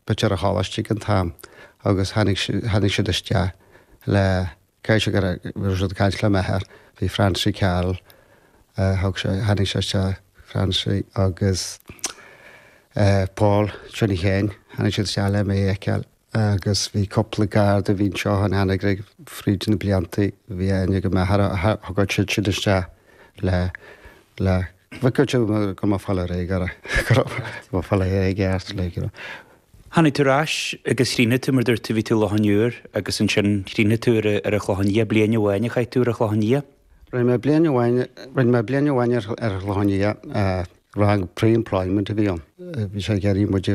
Bhí sé ar an choláiste ag an t-am agus tháinig, tháinig siad isteach le, caithfidh sé gur, bhí siad ag caint le m'athair, bhí Francie Carroll, thug sé, tháinig sé isteach, Francie agus eh Paul, Johnny Sheáin, tháinig siad isteach le mé a fheiceáil agus bhí cúpla Garda a bhí anseo in Anagaire fríd na blianta, bhí aithne ag m'athair a thug siad siad isteach le, le. Bhí cúirt agam go raibh mé ag fáil ar aghaidh i gceart, go raibh mé ag fáil ar aghaidh i gceart, like, you know. Tháinig tú ar ais agus chríochnaigh tú, mar dúirt tú, bhí tú i Loch an Iúir agus ansin chríochnaigh tú ar an Chlochán Liath, bliain amháin a chaith tú ar an Chlochán Liath. Rinne mé bliain amháin, rinne mé bliain amháin ar an Chlochán Liath, rang pre-employment a bhí ann, bhí sé ag iarraidh muid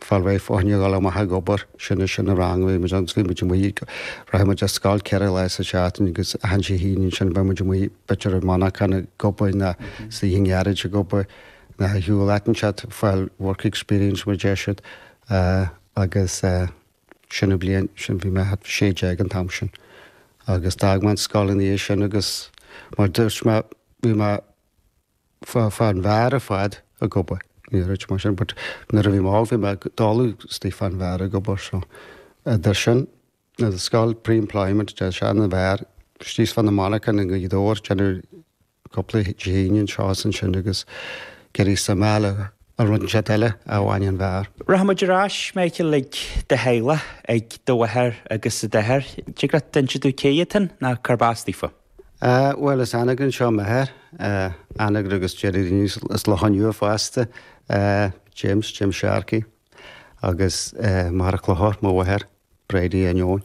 fáil réidh fá choinne dhul amach ag obair. Sin é sin an rang a bhí muid ann, suíonn muid amuigh, rachadh muid ar scoil ceithre lá sa tseachtain agus achan Dé hAoine ansin bheadh muid amuigh, b'fhéidir i monarchan ag obair nó istigh i ngaráiste ag obair nó ar shiúl áit inteacht, fáil work experience mar a deir siad. Agus sin an bhliain sin bhí mé thart fá sé déag an t-am sin agus d'fhág mé an scoil ina dhiaidh sin agus mar a dúirt mé bhí mé, Fá, fán bheár ar fad ag obair. Ní raibh sé mar sin but nuair a bhí mall bhí mé i dtólamh istigh fán bheár ag obair so a d'ith sin na do scoil pre-employment de sean an bheár is thíos fá na monarchana i nGaoth Dobhair ag déanamh cúpla Dé hAoine anseo is ansin agus ag iarraidh sa mbeal a rud inteacht eile a bhain an bheár. Rachaidh muid ar ais Michael ag do theaghlach, ag do mháthair agus ag d'athair. An dtig leat inse dúinn cé iad féin nó cárb as daofa? Bhuel, as Anagaire anseo m'athair, Anagaire agus deir daoine as Loch an Iúir fosta, James, James Sharkey, agus Machaire Chlochair, mo mháthair, Bridie Uí Ainneoin.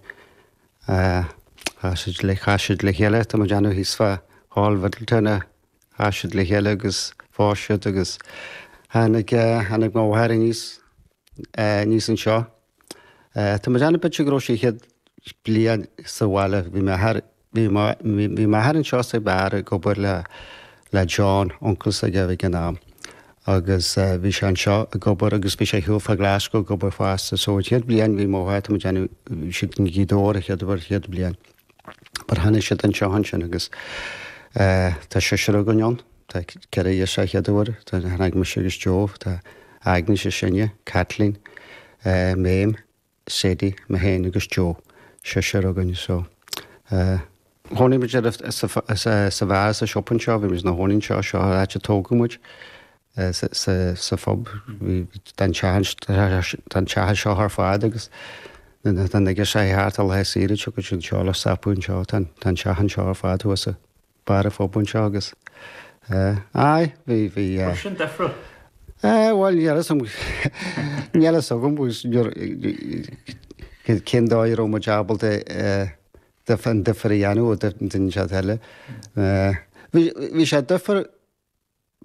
Chas siad le, chas siad le chéile, tá mé ag déanamh thíos fá Hall Mhiddletown a chas siad le chéile agus phós siad agus tháinig, tháinig mo mháthair aníos, aníos anseo. Tá mé ag déanamh b'fhéidir go raibh siad an chéad bhliain sa bhaile. Bhí m'athair Bhí m'athair anseo sa bheár ag obair le le John, uncail s'aige ag an am, agus bhí sé anseo ag obair agus bhí sé ar shiúl fá Ghlaschú ag obair fosta. So an chéad bhliain bhí mo tá mé ag déanamh, siad i nGaoth Dobhair a chéad uair, chéad bhliain. But tháinig siad anseo ansin agus tá seisear againn ann. Tá ceithre ghirseach, ceathrar atá ann, mise agus Joe, tá Agnes is sine, Caitlín, Méabh, Sadie, mé féin agus Joe, seisear againn. So, eh. Chónaigh muid ar sa bheár sa siopa anseo, bhí muid inár gcónaí anseo, seo an áit a tógadh muid, sa phub, bhí, tá an teach, tá an teach anseo ar fad agus tá na girseachaí ag teacht ar laethe saoire, tiocfaidh siad anseo le stopadh anseo, tá an teach anseo ar fad thuas. B'fhearr a phub anseo agus eh, aye, bhí, bhí eh. Bhuel, sin difreadh. Eh, bhuel, níl a fhios agam, níl a fhios agam agus níor, eh, cén dóigh a raibh muid ábalta eh, dif, an difear a dhéanamh ó duine seo d'eile. Eh, bhí, bhí sé difear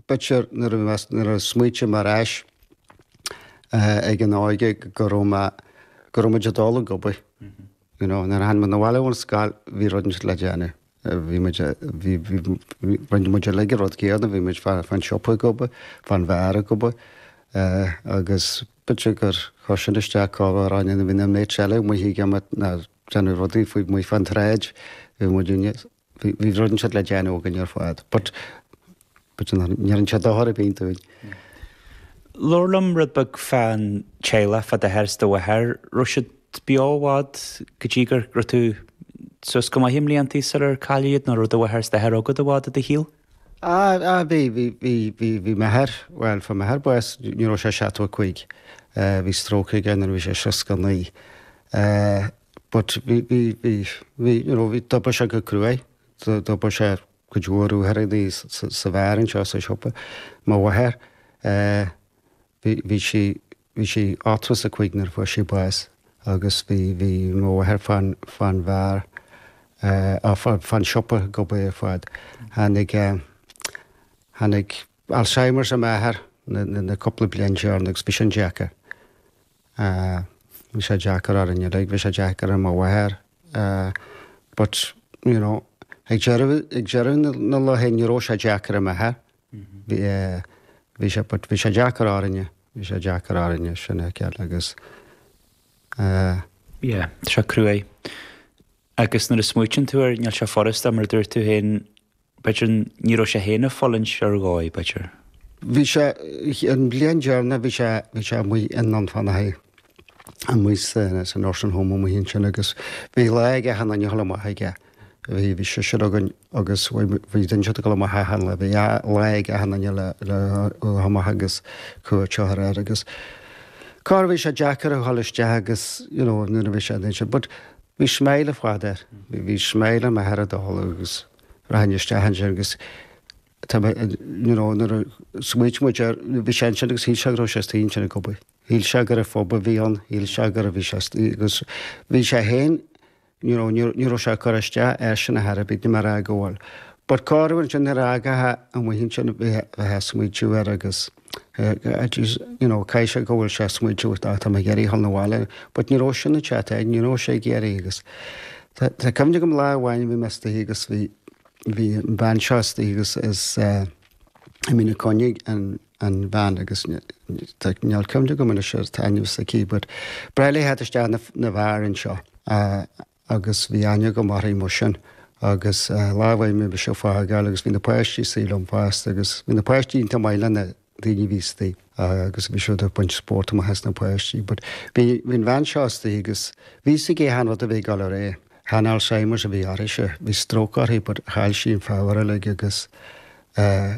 B'fhéidir nuair a mheas, nuair a smaoitím ar ais ag an óige go raibh mé, go raibh muid ag dul ag obair, you know, nuair a tháinig muid abhaile ón scoil bhí rud anseo le déanamh, bhí muid, bhí, bhí, rinne muid uilig an rud céanna, bhí muid fá, fán siopa ag obair, fán bheár ag obair agus b'fhéidir gur chuir sin isteach cá raibh na, na mates eile amuigh ag imirt ná ag déanamh rudaí faoi amuigh fán tsráid, bhí muidinne. Bhí rud ansiúd le déanamh againn ar fad, but ní dhearn sé dochar ar bith dúinn. Labhair liom rud beag fán teaghlach fá d'athair is do mháthair. Raibh siad beo i bhfad go dtí go raibh tú suas go maith i mblianta sular cailleadh iad, nó raibh do mháthair is d'athair agat i bhfad de do shaol? Á, bhí, bhí, bhí, bhí, bhí m'athair, bhuel, fuair m'athair bás nuair a bhí sé 75. Bhí stróc aige nuair a bhí sé 69. but bhí, bhí, bhí, bhí, you know, bhí, d'obair sé go cruaidh, d'obair sé cuid mhór uaireantaí sa bheár anseo sa siopa, mo mháthair, eh, bhí, bhí sí, bhí sí 85 nuair a fuair sí bás agus bhí, bhí mo mháthair fán, fán bheár, eh, á, fán, fán siopa ag obair ar fad. Tháinig eh, tháinig. Alzheimers ar m'athair na cúpla bliain deireanach agus bhí sin deacair. Bhí sé deacair orainn uilig, bhí sé deacair ar mo mháthair but you know ag deireadh an lae ní raibh sé deacair ar m'athair. Bhí sé but bhí sé deacair orainne, bhí sé deacair orainne sin a fheiceáil agus eh, yeah tá sé cruaidh agus nuair a smaoitíonn tú air níl sé furasta mar a dúirt tú féin B'fhéidir ní raibh sé féin ag fulaingt ar dhóigh, b'fhéidir. Bhí sé, an bhliain dheireanach bhí sé, bhí sé amuigh i nDún Fionnachaidh, amuigh san, sa nursing home amuigh ansin agus bhí lá ag achan duine le dhul amach chuige, bhí, bhí seisear againn agus bhí, bhí, dhein siad dul amach achan lá, bhí lá ag achan duine le dhul amach agus cuairt a thabhairt air agus cá raibh, bhí sé deacair a dhul isteach agus you know nuair a bhí sé, dhein sé but bhí smile ar fad air, bhí smile ar m'athair ag dul agus. rachainn isteach ansin agus tá mé you know nuair a smaoitigh muid air, bhí sé ansin agus shíl sé go raibh sé istigh ansin ag obair. Shíl sé gur pub a bhí ann, shíl sé go raibh bhí sé istigh agus bhí sé féin you know ní ní raibh sé ag cur isteach airsean ar chor ar bith ní mar fhág amhail. But cá raibh ansin nuair a d'fhágfá é amuigh ansin bheifeá ag smaoitiú air agus. It is, you know, caithfidh sé go bhfuil sé ag smaoitiú tá mé ag iarraidh a ghabháil 'na bhaile. But ní raibh sin an chat air, ní raibh sé ag iarraidh agus tá, tá cuimhne agam lá amháin bhí mé istigh agus bhí, bhí an bhean seo istigh agus as eh, Mín Uí Choinnigh an, an bhean agus tá níl cuimhne agam anois ar an ainm s'aici but ba ghnách léi a theacht isteach na, 'na bheáir anseo. agus bhí aithne agam orthaí mar sin agus lá bhí mé mise ag fágáil agus bhí na páistí anseo liom fosta agus bhí na páistí iontach maith le na daoine a bhí istoigh agus bhí siad ag baint spórt amach as na páistí but bhí bhí an bhean seo istoigh agus bhí a fhios aici achan rud a bhí ag dul ar aghaidh. Chan Alzheimer's a bhí orthaise, bhí stroke orthaí but chaill sí an power uilig agus eh,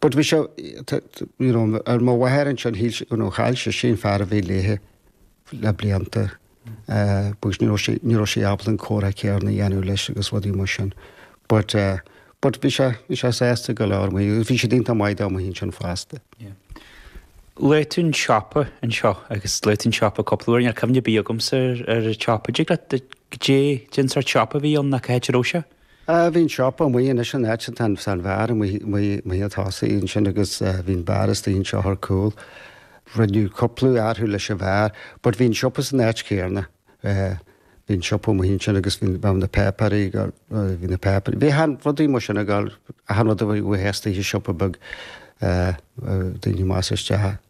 But bhí sé, you know, ar mo mháthair ansin shíl, you know, chaill sí sin fear a bhí léithe le blianta because ní raibh sí, ní raibh sí ábalta an comhrá céarna a dhéanamh leis agus rudaí mar sin. But, but bhí sé, bhí sé sásta go leor amuigh agus bhí siad iontach maith dó amuigh ansin fosta. Luaigh tú an siopa anseo agus luaigh tú an siopa cúpla uair, níl cuimhne ar bith agamsa ar an tsiopa. Dtig leat goidé, cén sórt siopa a bhí ann nó cá háit a raibh sé? Ah, bhí an siopa amuigh anois an áit atá an beár amuigh, amuigh chun tosaigh ansin agus bhí an beár istigh anseo ar cúl. Rinneadh cúpla athrú leis an bheár but bhí an siopa san áit chéanna. Bhí an siopa amuigh ansin agus bhí, bhí na páipéirí, bhí na páipéirí, bhí achan rudaí mar sin ag, achan rud a bheadh ag teastáil i siopa beag, daoine amach is isteach.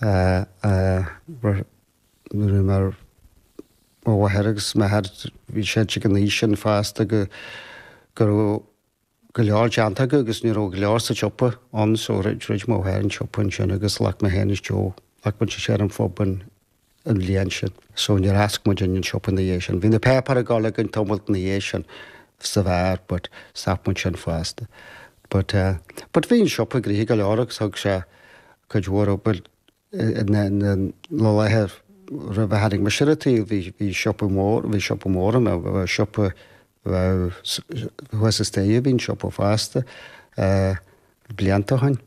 a raibh mé mar mo mháthair agus m'athair, bhí siad ag an aois sin fosta go raibh go leor déanta acu agus ní raibh go leor sa tsiopa ann so dhruid mo mháthair an siopa ansin agus ghlac mé féin is Joe, ghlac muid is ar an phub an bhliain sin so níor fhoscail muid an siopa ina dhiaidh sin. Bhí na páipéir ag dul againn tamalt ina dhiaidh sin sa bheár but stop muid sin fosta but, but bhí an siopa gnoitheach go leor agus thug sé cuid mhór obair na laetha roimh a tháinig mise ar an tsaol, bhí siopa mór, bhí siopa mór ann, siopa thuas an staighre a bhí an siopa fosta, blianta ó shin.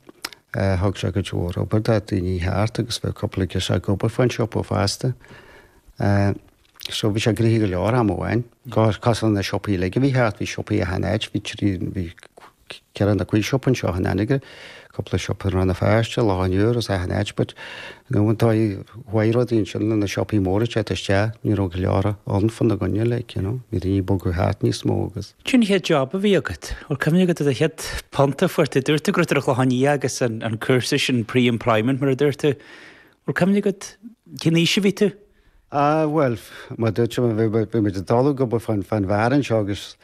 Thug sé cuid mhór obair do dhaoine thart agus bhí cúpla girseach ag obair fán siopa fosta. So bhí sé gnoitheach go leor am amháin. Cosúil le siopaí uilig a bhí thart, bhí siopaí achan áit, bhí trí, bhí ceithre nó cúig siopa anseo in Anagaire, cúpla siopa in Rann na Feirste, Loch an Iúir is achan áit but, you know, an dóigh a chuaigh rudaí ansin le na siopaí móra ag teacht isteach, ní raibh go leor ann fána gcoinne, like, you know, bhí daoine ag bogadh thart níos mó agus. Goidé an chéad job a bhí agat? An bhfuil cuimhne agat an chéad phunt a fuair tú, dúirt tú go raibh tú ar an Chlochán Liath agus an cúrsa sin, pre-employment mar a dúirt tú, an bhfuil cuimhne agat, cén aois a bhí tú? Á, bhuel, mar a dúirt mé, bhí muid ag dul ag obair fán bheár anseo agus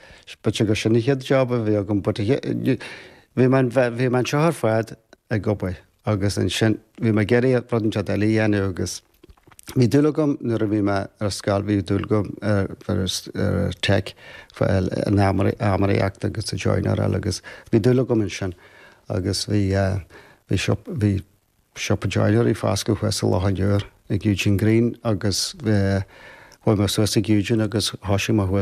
b'fhéidir gur sin an chéad job a bhí agam but bhí mé anseo ar fad ag obair agus ansin bhí mé ag iarraidh rud ansiúd eile a dhéanamh agus bhí dúil agam nuair a bhí mé ar scoil, bhí dúil agam ar tech, san adhmadóireacht agus an joineráil agus bhí dúil agam ansin agus bhí, bhí, bhí. Siopa joinery foscailte thuas i Loch an Iúir ag Eugene Greene agus chuaigh mé suas ag Eugene agus thoisigh mé thuas